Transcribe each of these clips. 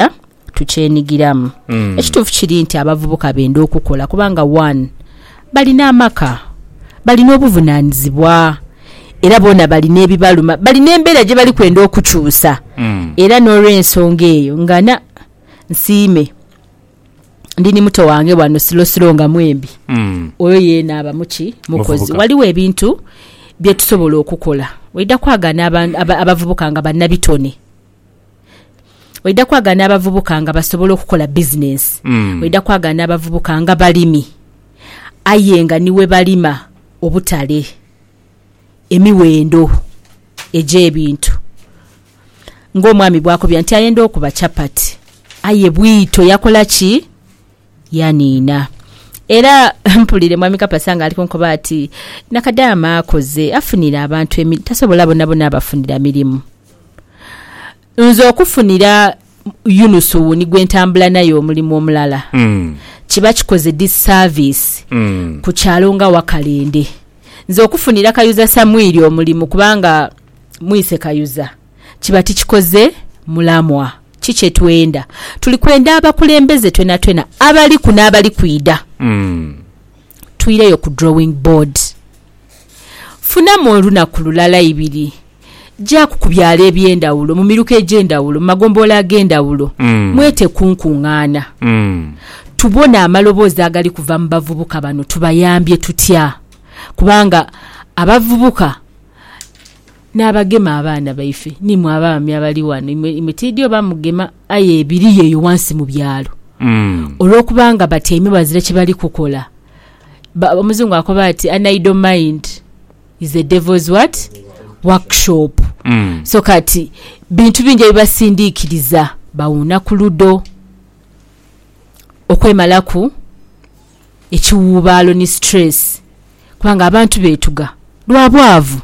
tukyayagala tukyenigiramu mm. ekituufu kiri nti abavubuka benda okukola kubanga one balina amaka balina obuvunanizibwa era boona balina ebibaluma balina embeera gye bali kwenda okukyusa mm. era n'olwensonga eyo ngana nsiime ndi ni muto wange wano silosilo nga mwembi mm. oyo yeena aba muki mukozi waliwo ebintu bye tusobola okukola waidha kwagana abavubuka nga bannabitone Oidha kwagala n'abavubuka nga basobola okukola bizinensi, oidha kwagala n'abavubuka nga balimi aye nga ni we balima obutale, emiwendo egy'ebintu. Ng'omwami bw'akobya nti ayenda okuba chapati aye bwito yakola ki? Yaniina. Era mpulire Mwami Kapasa nga ali kunkoba ati, Nakadaama akoze, afunire abantu emi, tasobola bonabona abafunira mirimu. Nze okufunira Yunusu wuuni gwe ntambula naye omulimu omulala, kiba kikoze dissaviisi ku kyalo nga Wakalende. Nze okufunira Kayuza Samwiri omulimu kubanga mwise Kayuza. kiba tikikoze mulamwa. Ki kye twenda? Tuli kwenda abakulembeze twonatwona abaliku n'abali kwidha. Twireyo ku drawing board. Funamu olunaku lulala ibiri, jaaku ku byalo eby'endhawulo, mu miruka egy'endhawulo, mu magombolola ag'endhawulo, mwete ku nkungaana. Tubone amaloboozi agali kuva mu bavubuka bano. Tubayambye tutya? Kubanga abavubuka. N'abagema abaana baife, n'imwe abaami abali ghano, imwe, imwe tiidhi oba mugema, aye ebiriyo eyo ghansi mu byalo, olwokubanga batyaime bazira kye bali kukola. Ba, Omuzungu akoba ati, An idle mind is the devil's what? Workshop. So kati, bintu bingi ebibasindiikiriza bawuuna ku ludo, okwemalaku. ekiwuubaalo ni stress kubanga abantu beetuga lwa bwavu,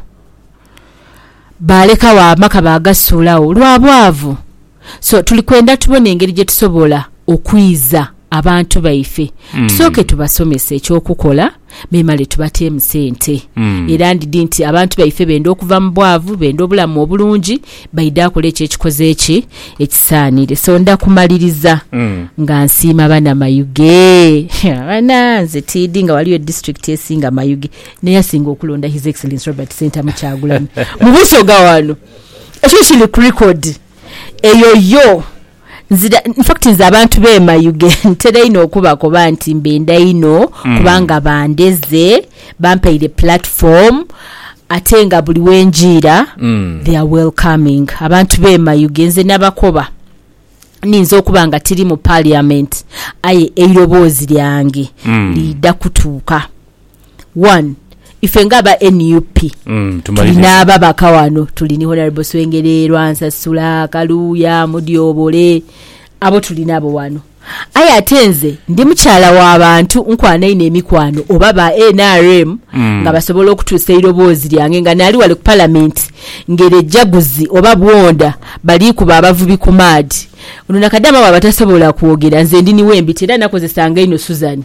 baalekagho amaka baagasuulagho lwa bwavu. So tuli kwenda tubone engeri gye tusobola okwiza abantu baife. Tusooke tubasomese eky'okukola memale tubateemu sente. Era ndidhi nti abantu baife benda okuva mu bwavu, benda obulamu obulungi. Baidha akola ekyo ekikoze kye ekisaanire. So ndha kumaliriza nga nsiima Banamayuge. Haa bana, nze tiidhi nga waliyo disiturikiti esinga Mayuge n'eyasinga okulonda His Excellence Robert Ssentamu Kyagulanyi mu Busoga wano. Ekyo kiri ku record. Eyo yo. Nzira, infact nze abantu be mayuge ntera inho okubakoba nti mbenda inho kubanga bandeze, bampaire platform ate nga buli wenjiira they are welcoming. Abantu be mayuge nze nabakoba niyinza okuba nga tiri mu parliament aye eiroboozi lyange liidha kutuuka one ife nga aba nup tulina ababaka wano tuli ni honorable swengere lwansasula kaluuya mudyobole abo tuli nabo wano aye ate nze ndi mukyala wa bantu nkwana inho emikwano oba ba nrm mm. nga basobola okutuusa eiroboozi lyange nga naali wale ku palamenti ngere ejaguzi oba bwonda balikuba abavubi ku maadi ono nakadaama bwaba tasobola kwogera nze ndi niwembita era nakozesanga inho suzani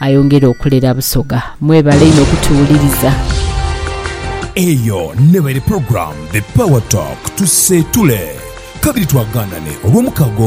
Ayongere okulera Busoga. Mwebale inho kutuwuliriza. Eyo neba eri program the power talk tuseetule kabiri twaganane olwomukaaga olwo.